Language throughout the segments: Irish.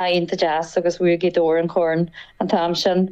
iontach deas agus bhuaigh Gaoth Dobhair an corn an t-am sin.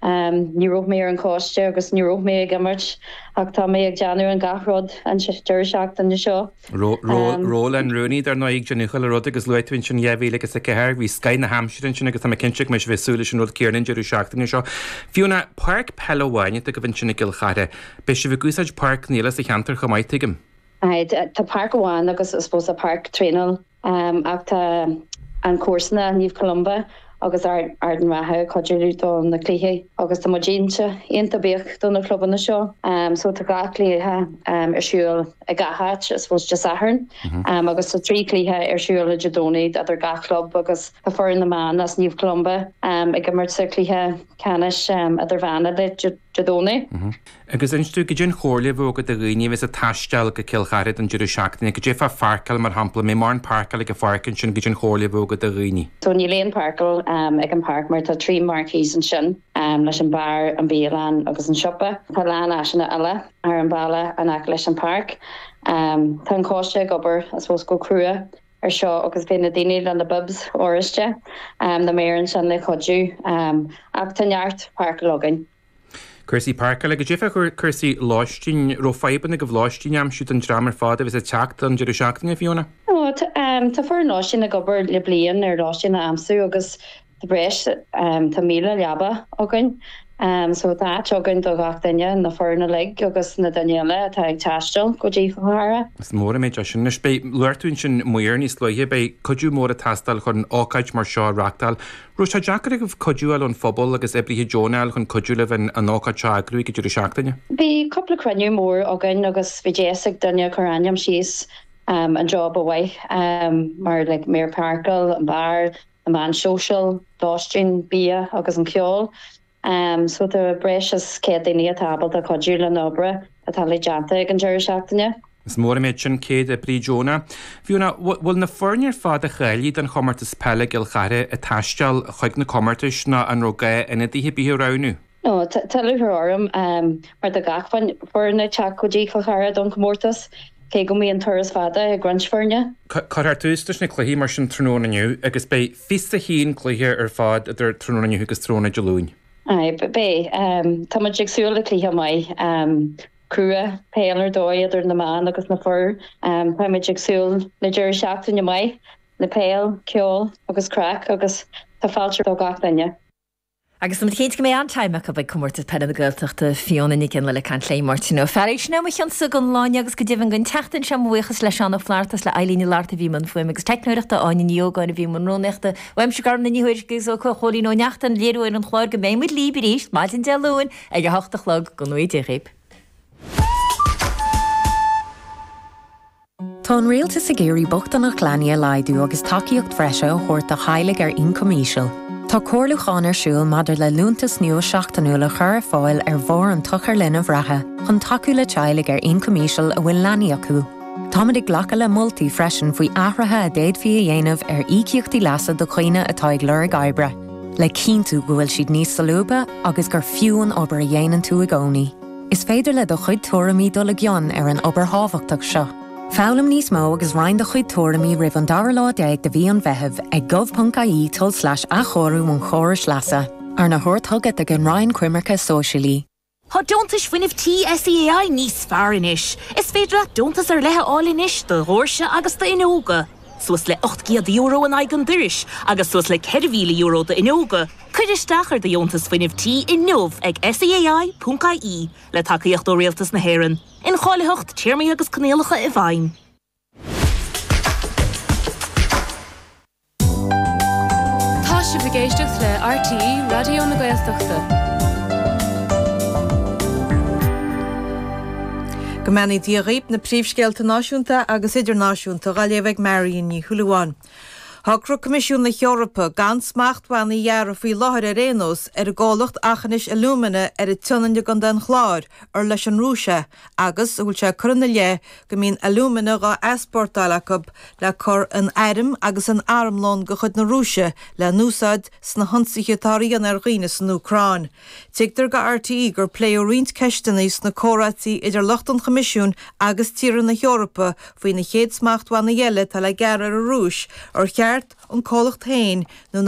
Ní raibh mé ar an choiste agus ní raibh mé ag imirt ach tá mé ag déanamh an gach rud an deireadh seachtaine seo. Ról an rúnaí, dar ndóigh, ag déanamh chuile rud agus luaigh tú ansin dhá mhíle agus a ceathair, bhí scoth na haimsire ansin agus tá mé cinnte go mbeidh sibh ag súil leis an rud céanna an deireadh seachtaine seo. Fiona, páirc peile amháin atá agaibh ansin i gCill Chartha. Beidh sibh ag úsáid páirceanna eile sa cheantar chomh maith, tuigim? Tá páirc amháin agus I suppose páirc traenála. Ach tá an comharsana, Naomh Columba agus Ard an Rátha, ag cuidiú linn do na cluichí agus tá muid iontach buíoch do na clubanna seo. So tá dhá chluiche ar siúl ag gach áit, I suppose Dé Sathairn agus tá trí chluiche ar siúl ar Dé Domhnaigh idir gach club agus tá foireann na mban as Naomh Columba ag imirt sa chluiche ceannais idirmheánach Dé Domhnaigh. agus inis dúinn cad é an chomhairle a bheadh agat do dhaoine a bheas ag taisteal go Cill Chartha don deireadh seachtaine, cad é fá pháirceáil, mar shampla, an mbeidh mórán páirceáil ag an pháirc ansin cad é an chomhairle a bheadh agat do dhaoine. So níl aon pháirceáil ag an páirc mar tá trí marquees ansin leis an beár, an bialann agus an siopa. Tá a lán áiseanna eile ar an bhaile in aice leis an páirc. Tá an coiste ag obair I suppose go crua ar seo agus beidh na daoine le na bibs oráiste na maoir ansin le cuidiú ach tá neart páirceáil againn. Cúrsaí páirceála cad é fá chúrsaí lóistín. An raibh fadhbanna agaibh lóistín a aimsiú don dream ar fad a bheas ag teacht don deireadh seachtaine, Fiona? Tá foireann lóistín ag obair le bliain ar lóistín a aimsiú agus tá breis Tá 1,000 leaba againn so tá áit againn do gach duine, na foirne uilig agus na daoine eile atá ag taisteal go dtí Cill Chartha. Is mór an méid é sin. Anois, beidh luaigh tú ansin maoir níos luaithe, beidh cuidiú mór ag teastáil chun ócáid mar seo a reachtáil. raibh sé deacair agaibh cuidiú a fháil ón phobal agus oibrithe deonacha a fháil chun cuidiú libh an an ócáid seo a eagrú ag an deireadh seachtaine. Bhí cúpla cruinniú mór againn agus bhí deis ag daoine a chur ainm síos an jab ba mhaith mar like maor páirceála, an beár, na meáin shóisialta, lóistín, bia agus an ceol. Am so tá breis is 100 daoine atá ábalta cuidiú le na hoibre atá le déanta ag an deireadh seachtaine. Is mór an méid sin 100 oibrí deonach. Fiona, an bhfuil na foirne ar fad a cháiligh don chomórtas peile i gCill Chartha ag taisteal chuig na comórtais nó an raibh gá ionadaithe ar bith a roghnú? No, tá lúcháir orm mar tá gach foireann ag teacht go dtí Cill Chartha don chomórtas. Cé go mbíonn turas fada ag roinnt foirne. Cuirfear tús leis na cluichí mar sin tráthnóna inniu agus beidh 21 cluiche ar fad idir tráthnóna inniu agus tráthnóna Dé Luain. Beidh. Tá muid ag súil le cluiche maith, crua, peil ar dóigh, idir na mná agus na fir. Táimid ag súil le deireadh seachtaine maith le peil, ceol agus craic agus tá fáilte roimh gach duine. Agus tá muid cinnte go mbeidh an-time acu ag Comórtas Peile na Gaeltachta, Fiona Nic Fhionnlaoich ag caint le Máirtín Ó Fearraigh, sin é mo chionsa don lá inniu agus go deimhin don tseachtain seo, mo bhuíochas le Seán Ó Flatharta is le Eilín Ní Fhlatharta a bhí i mbun fuaime agus teicneoireachta, Áine Ní Ógáin a bhí i mbun rúnaíochta, uaimse Gormfhlaith Ní Thuairisg agus ó Chóilín Ó Neachtain, léiritheoir an chláir, go mbeidh muid libh arís maidin Dé Luain ag a hocht a chlog. Go ngnóthaí Dia dhaoibh. Tá an Rialtas ag iarraidh bochtaineacht leanaí a laghdú agus tacaíocht bhreise a thabhairt do theaghlaigh ar ioncam íseal. Tá comhairliúchán ar siúl maidir le liúntas nua seachtainiúil a chur ar fáil ar bharr an tsochair linbh reatha chun tacú le teaghlaigh ar ioncam íseal a bhfuil leanaí acu. Táimid ag glacadh le moltaí freisin faoi athruithe a d'fhéadfaí a dhéanamh ar íocaíochtaí leasa do dhaoine atá ag lorg oibre, le cinntiú go bhfuil siad níos solúbtha agus gur fiú an obair a dhéanann tú i gcónaí. Is féidir le do chuid tuairimí dul i gcion ar an obair thábhachtach seo. Foghlaim níos mó agus roinn do chuid tuairimí roimh an dara lá déag de mhí an Mheithimh ag gov.ie tulslais athchóiriú an chórais leasa, arna thabhairt chugat ag an Roinn Coimirce Sóisialaí. Tá Deontais Fuinnimh Tí SEAI níos fearr anois! Is féidir leat deontas ar leith a fháil anois do dhóirse agus d'fhuinneoga. suas le €800 in aghaidh an dorais agus suas le €4,000 d'fhuinneoga, cuir isteach ar do dheontas fuinnimh tí inniu ag SEAI.ie le tacaíocht ó Rialtas na hÉireann, incháilitheacht téarmaí agus coinníollacha i bhfeidhm. Tá sibh ag éisteacht le RTÉ Raidió na Gaeltachta. Go mbeannaí Dia dhaoibh na príomhscéalta náisiúnta agus idirnáisiúnta dhá léamh ag Marion Ní Shúilleabháin. Shocraigh Coimisiún na hEorpa gan smachtbhannaí a ghearradh faoi láthair ar aon nós ar an gcomhlacht Aughinish Alumina ar an tSionainn i gContae an Chláir, ar leis an Rúis é, agus a bhfuil sé curtha ina leith go mbíonn alúmana dhá easpórtáil acu le cur in airm agus in armlón de chuid na Rúise le n-úsáid sna hionsaithe atáthar a dhéanamh ar dhaoine san Úcráin. Tuigtear do RTÉ gur pléadh roinnt ceisteanna sna comhráití idir lucht an Choimisiúin agus tíortha na hEorpa faoi na chéad smachtbhannaí eile atá le gearradh ar an Rúis, ar cheart an comhlacht féin nó na.